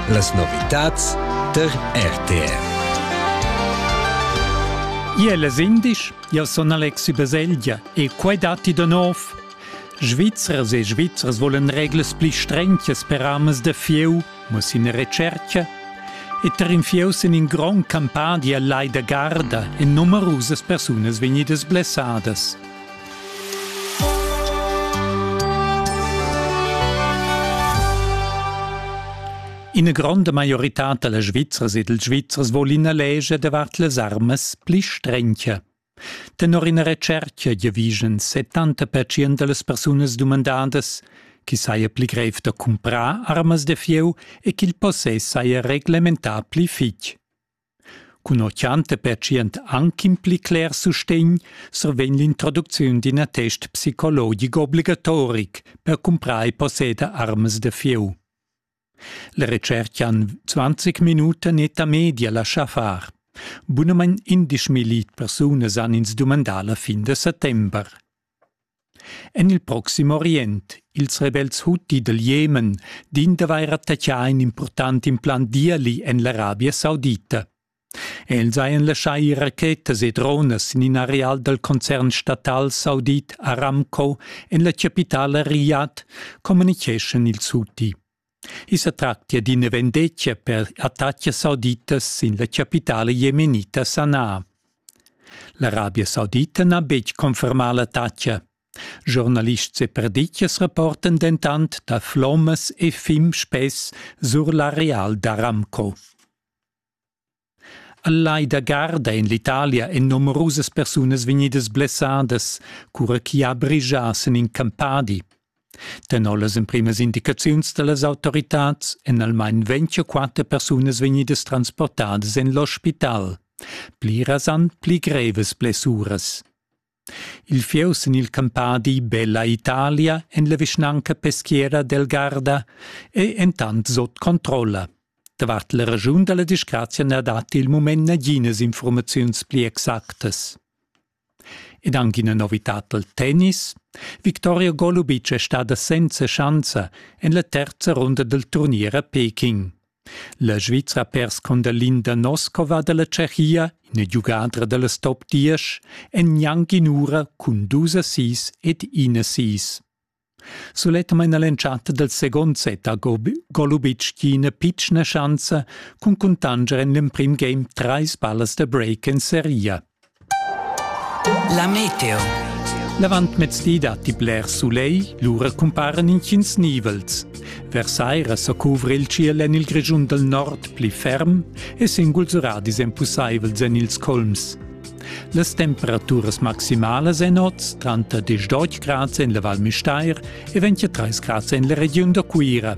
Las novitads tar RTR. Iel es indisch, jau sun Alexi Baselgia e quai datti da nov. Svizzers e Svizzers volen reglas pli strentjas per amas da fieu, mo sin recerca e tar in fieu sin in grond campadia lai da garda en numerusas persunas vegnidas blessadas. Ina gronda maioritad da las Svizzers e dals Svizzers vol ina legia davart las armas pli strencha. Tenor ina retscherca giavischan 70% da las persunas dumandadas chi saja pli grev da cumprar armas da fieu e ch'il possess saja reglementà pli fich. Cunoccianta pertschient anc in pli cler sustegn survegn l'introducziun d'in attest psicologic obligatoric per cumprar e posseder armas da fieu. La retscherca han 20 minuten eta media lascha far. Bunamain 11.000 persunas han ins dumandà la fin de settember. En il Proxim Orient, ils rebels Huti dal Jemen din d'avair attaccà in impurtant implant d'ieli en l'Arabia Saudita. Els hajan laschà ir rachetas e dronas sin in areal dal concern statal saudit Aramco en la chapitala Riyadh, communicheschan ils Huti. I sa tractia d'ina vendetga per attatgas sauditas sin la chapitala jemenita Sanaa. L'Arabia Saudita n'ha betg confermà l'attacca. Giornalists e perditgas rapportan dentant da flommas e fim spess sur l'areal d'Aramco. al lai da garda en l'italia èn numerusas persunas vegnidas blessadas cura ch'i ha brigia sin in campadi tenor las emprimas indicaziuns da las autoritads èn almain ventg u quatter persunas vegnidas transportadas en l'ospital pliras han pli grevas blessuras Il fieu sin il campadi Bella Italia en la vischnanca peschiera d'Elgarda è entant sut controlla. Davart la raschun da la disgrazia na datti il mument naginas informaziuns pli exactas. Ed anche una novità dal tennis. Victoria Golubic è stada senza schanza en la terza runda del turnier a Peking. La Svizra ha pers con da Linda Noskova dalla Tschechia, ina giugadra dallas top 10, en gnanc in'ura cun dus assis ed in assis. Suletta maina l'entschatta dal second set ha Golubic ina pitschna schanza cun cuntanger en l'emprim game trais ballas da break en seria. La meteo. L'avantmezdi datti bler sulegl, lura cumparan intgins nivels. Versaira sa cuvra il tschiel en il Grischun dal nord pli ferm e singuls radis èn pussaivels en ils colms. Las temperaturas maximalas en oz tranter 10 grads en la Val Müstair e 23 grads en la regiun da Cuira.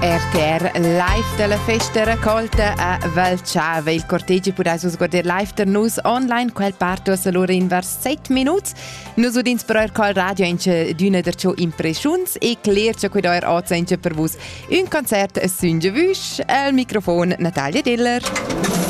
RTR live dalla festa raccolta a Val Chave. Il cortegi pudais vus guardar live da nus online, quel partos allora in vers 7 minuts. Nus udins però er col radio ince d'una der ciò impreschuns e cler che quid er oz ince per vus un concert a Sünge Wüsch al microfon Natalia Diller.